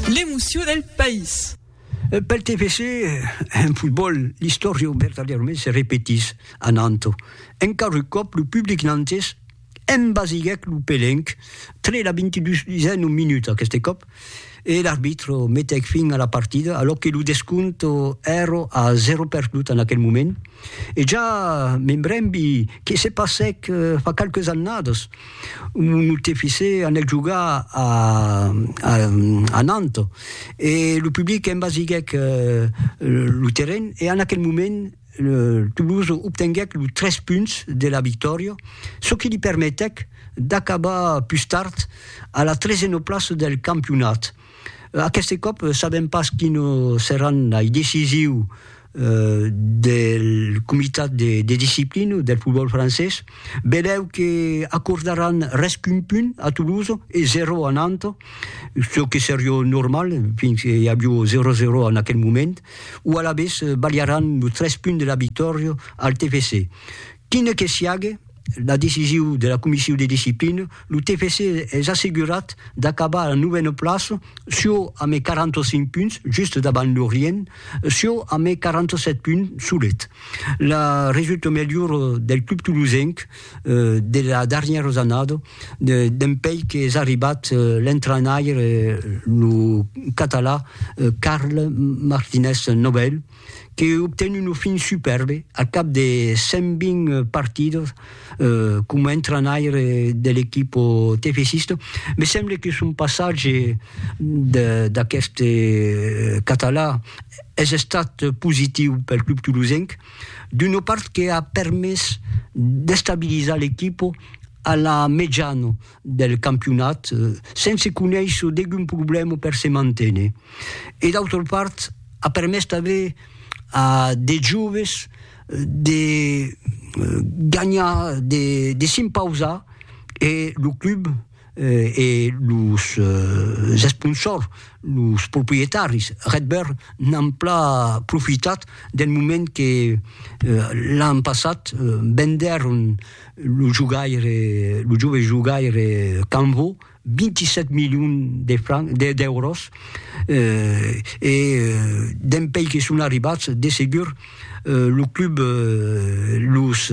L'emoció del país. Pel TFC, en fotbòl, l'istòria vertadièrament se repetís a Nanto. Encara un còp, lo public nantés embasiguèc lo pelenc tre la 22n minuta aqueste còp e l'arbitro metèc fin a la partida alòc que lo descòmpte èra a 0 perdut en aquel moment. E ja me brembi que se passèc fa qualques annadas. Monotè Fisé anèc jogar a Nantes e lo public embasiguèc lo terren e en aquel moment Toulouse obtenguèc los 3 punts de la victòria, çò que li permetèc d'acabar pus tard a la tresena plaça del campionat. Aqueste còp sabèm pas quines seràn lei decisius del comitat de disciplina del fotbòl francés, belèu que acordaràn res qu'un punt a Toulouse e zero a Nantes, çò que seriá normal fins que i aviá 0-0 en aquel moment, o alavetz balharàn los tres punts de la victòria al TFC. Quine que siague la decisiu de la Comissiu de Disciplina, lo TFC es assegurat d'acabar a la novena plaça çò amé 45 punts, just davant Lorient, çò amé 47 punts solet. La resulta melhora del club tolosenc de la darnièra jannada dempèi qu'es arribat l'entrainaire, lo catalan Carles Martinez Nobel. que obten una fin supèrbe al cap de 120 partidas coma entranaire de l'equipa tefesista, me semble que son passatge d'aqueste catalan es estat positiu pel club tolosenc, d'una part que a permés d'estabilizar l'equipa a la mejana del campionat sense conéisser degun problèma per se manténer e d'autra part a permés tanben a de joves de ganhar de s'impausar e lo club e los esponsors los proprietaris Redbird n'an plan profitat del moment que l'an passat vendèron Lo jogaire, lo jove jogaire Canvo, 27 milions de francs, d'èuros, eh, e dempèi que son arribats, de segur, lo club, los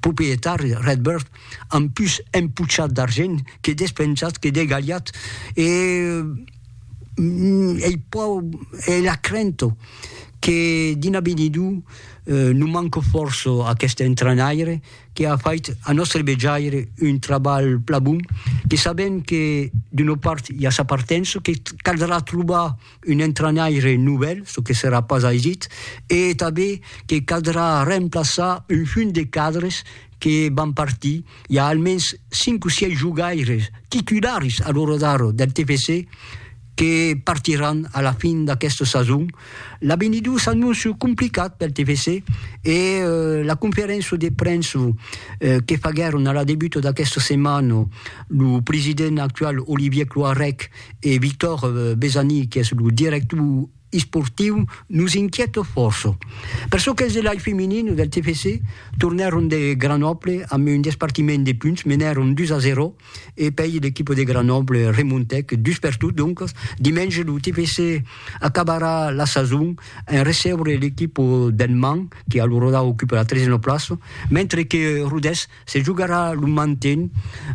proprietari, Redbird, an pus empuchat d'argent que despensat, que degalhat, e ei pro, ei la crento que dina benidou, Non manco fòrça aqueste entrainaire que a fait a nòstre vejaire un trabalh plan bon, que sabem que d'una part i a sa partença, que caldrà trobar un entrainaire novèl, çò que serà pas aisit, e tanben que caldrà remplaçar un funt de cadres que van partir, i a almens cinc o sièis jogaires titularis a l'ora d'ara del TFC que partiràn a la fin d'aquesta sason. L'aveni d'ora s'anóncia complicat pel TFC e la conferéncia de premsa que faguèron a la debuta d'aquesta setmana lo president actual Olivier Cloarec e Victor Besani qu'es lo director esportiu nos inquièta fòrça. Per çò qu'es de l'ai feminin del TFC, tornèron de Granòble amb un despartiment de punts, menèron 2 a 0 e pei l'equipa de Granòble remontèc dus per tot, doncas dimenge lo TFC acabarà la sason en recebre l'equipa del Mans que a lo Rodau ocupa la tresena plaça, mentre que Rodés Se jogarà lo manten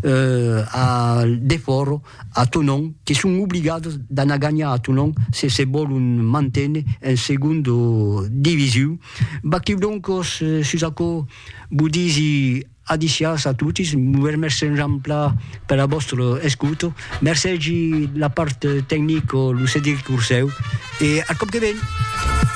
a Defòro, a Tonon, que son obligados d'anar ganhar a Tonon se se vòlon manténer en segonda divisiu. Vaquiu doncos sus aquò, vos disi adiciàs a totis, vos remèrci enjamplà per la vòstra escota, mercègi la part tecnica lo Cedric Ursèu e ath còp que ven!